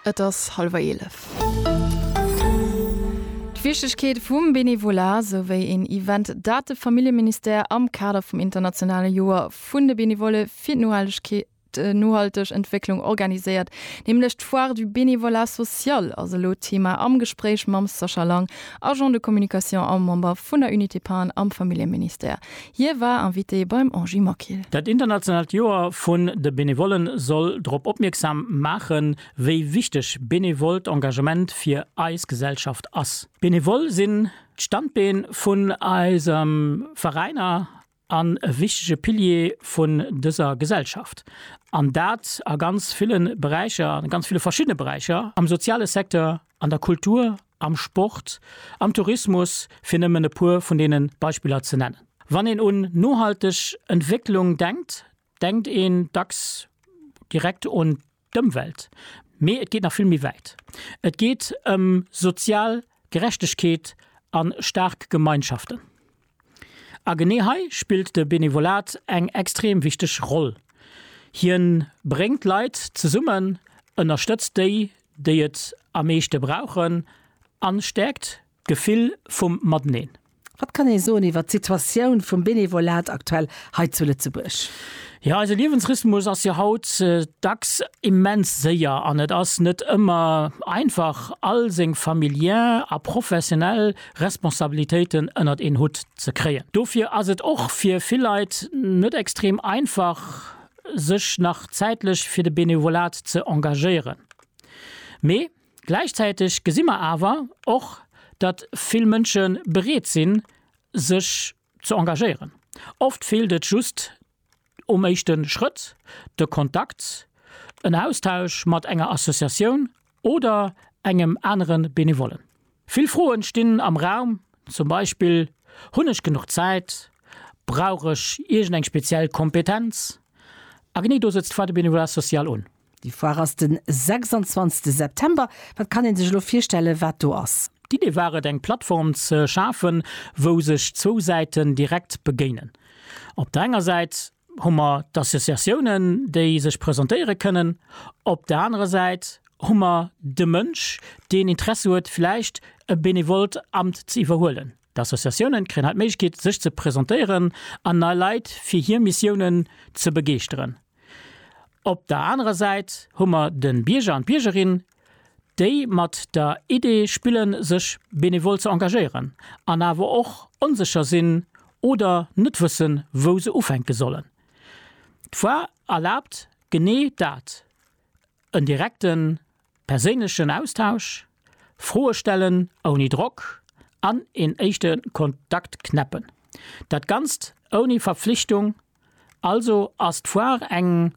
Et ass hallwer eelef. D'Wichtegkeet vum Benevolat, sou wéi een Event, dat de Familljeministère am Kader vum internationale Joer vun de Benevolle fir d'Nohaltegkeet, d'nohalteg Entwécklung organiséiert, nämlech d'Foire du bénévolat social, ass elo Thema am Gespréich mam Sascha Lang, Agent de communication a Member vun der Unité Paen am Familljeministère. Hie war Invité beim Angie Mockill. Dat internationaalt Joer vun de Benevollen soll drop opmierksam maachen, wéi wichteg benevollt Engagement fir eis Gesellschaft ass. D'Benevolle sinn d'Standbeen vun eisem Veräiner an e wichtege Pilier vun dëser Gesellschaft, an dat a ganz ville Beräicher, a ganz ville verschiddene Beräicher am soziale Secteur. An der Kultur, am Sport, am Tourismus, fir nëmmen e puer vun deene Beispiller ze nennen. Wann een un nohalteg Entwécklung denkt, denkt een dacks direkt un d'Ëmwelt, mee et geet nach vill méi wäit. Et geet ëm sozial Gerechtegkeet a staark Gemeinschaften. A genee hei spillt de Benevolat eng extrem wichteg Roll. Hien bréngt Leit zesummen, ënnerstëtzt déi, déi et am meeschte brauchen an stäerkt d'Gefill vum Mateneen. Wat kann ee soen iwwert d'Situatioun vum Benevolat aktuell hei zu Lëtzebuerg? Jo, eise Liewensrhythmus ass jo haut dacks immens séier an et ass net ëmmer einfach all seng familiär a professionell Responsabilitéiten ënnert een Hutt ze kréien. Dofir ass et och fir vill Leit net extrem einfach, sech nach zäitlech fir de Benevolat ze engagéieren. Mee gläichzäiteg gesi mer awer och, datt vill Mënsche bereet sinn, sech ze engagéieren. Oft feelt et just um éischte Schrëtt, de Kontakt, en Austausch mat enger Associatioun oder engem anere Benevollen. Vill Froen stinn am Raum, zum Beispill, Hunn ech genuch Zäit? Brauch ech iergend eng speziell Kompetenz? A genee do sëtzt d'Foire du Bénévolat social un. Déi Foire ass den 26 September. Wat kann een sech elo virstellen wat do ass? D'Idee war et eng Plattform ze schafen wou sech zwou Säiten direkt begéinen. Op der enger Säit hu mer d'Associatiounen déi sech presentéiere kënnen, op der anerer Säit hu mer de Mënsch deen Interesse huet vläicht e benevollt Amt ze iwwerhuelen. D'Associatiounen kréien hei d'Méiglechkeet sech ze presentéieren an nei Leit fir hier Missiounen ze begeeschteren. Op der anerer Säit hu mer den Bierger an d'Biergerin, déi mat der Idee spillen sech benevol ze engagéieren an awer och onsécher sinn oder net wëssen wou se ufänken sollen. D'Foire erlaabt genee dat, en direkten Perséinlechen Austausch, Froe stellen ouni Drock an een éischte Kontakt knäppen. Dat Ganzt ouni Verpflichtung, also ass d'Foire eng,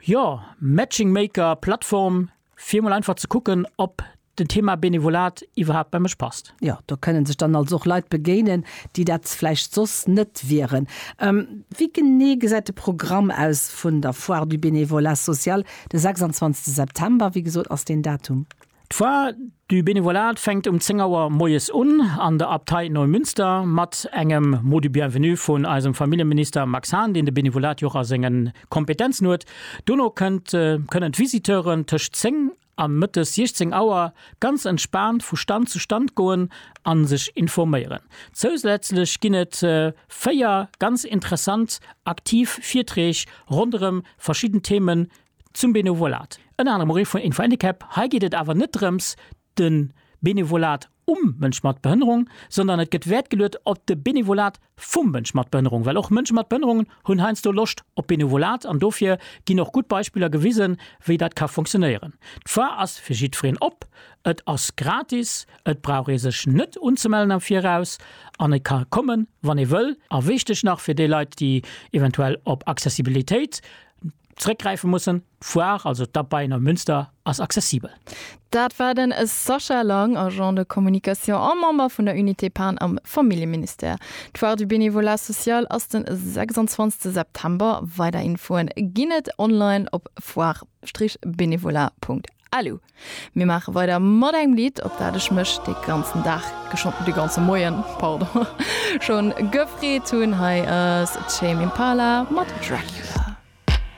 jo, Matching-Maker-Plattform, fir mol einfach ze kucken, ob den Thema Benevolat iwwerhaapt bei mech passt. Jo, do kënnen sech dann also och Leit begéinen, déi dat vläicht soss net wieren. Wéi genee gesäit de Programm aus vun der Foire du bénévolat social de 26 September? Wéi gesot ass deen Datum. D'Foire du bénévolat fänkt um 10 Auer moies un an der Abtei Neumünster mat engem Mot du bienvenu vun eisem Familljeminister Max Hahn, deen de Bénévolat jo och a sengen Kompetenzen huet. Dono kënnt, kënnen d'Visiteuren tëscht 10 an mëttes 16 Auer ganz entspaant vu Stand zu Stand goen an sech informéieren. Zousätzlech ginn et 4 ganz interessant aktiv Virträg ronderëm verschidden Themen zum Benevolat. Ënner anerem och ee vun Info Handicap. Hei geet et awer net drëms de Benevolat um Mënsch mat Behënnerung, sondern et gëtt Wäert geluet op de Benevolat vum Mënsch mat Behënnerung, well och Mënsche mat Behënnerungen hunn heiansdo Loscht op Benevolat an dofir ginn och gutt Beispiller gewisen, wéi dat ka funktionéieren. D'Foire ass fir jiddwereen op, et ass gratis, et brauch ee sech net unzemellen am Viraus an e ka kommen, wann ee wëll. A wichteg nach fir déi Leit, déi eventuell op Accessibilitéit. Zréckgräife mussen. D'Foire, also d'Abeien am Münster, ass accessibel. Dat war den Sascha Lang, Agent de communication a Member vun der Unité Pan am Familljeministère. D'Foire du bénévolat social ass de 26 September. Weider Infoen ginn et online op foire-bénévolat.lu. Mir maache weider mat engem Lidd, op dat ech mech de ganzen Dag, geschonn de ganze Moien, pardon, schonn gefreet hunn. Hei ass Tame Impala mat Dracula.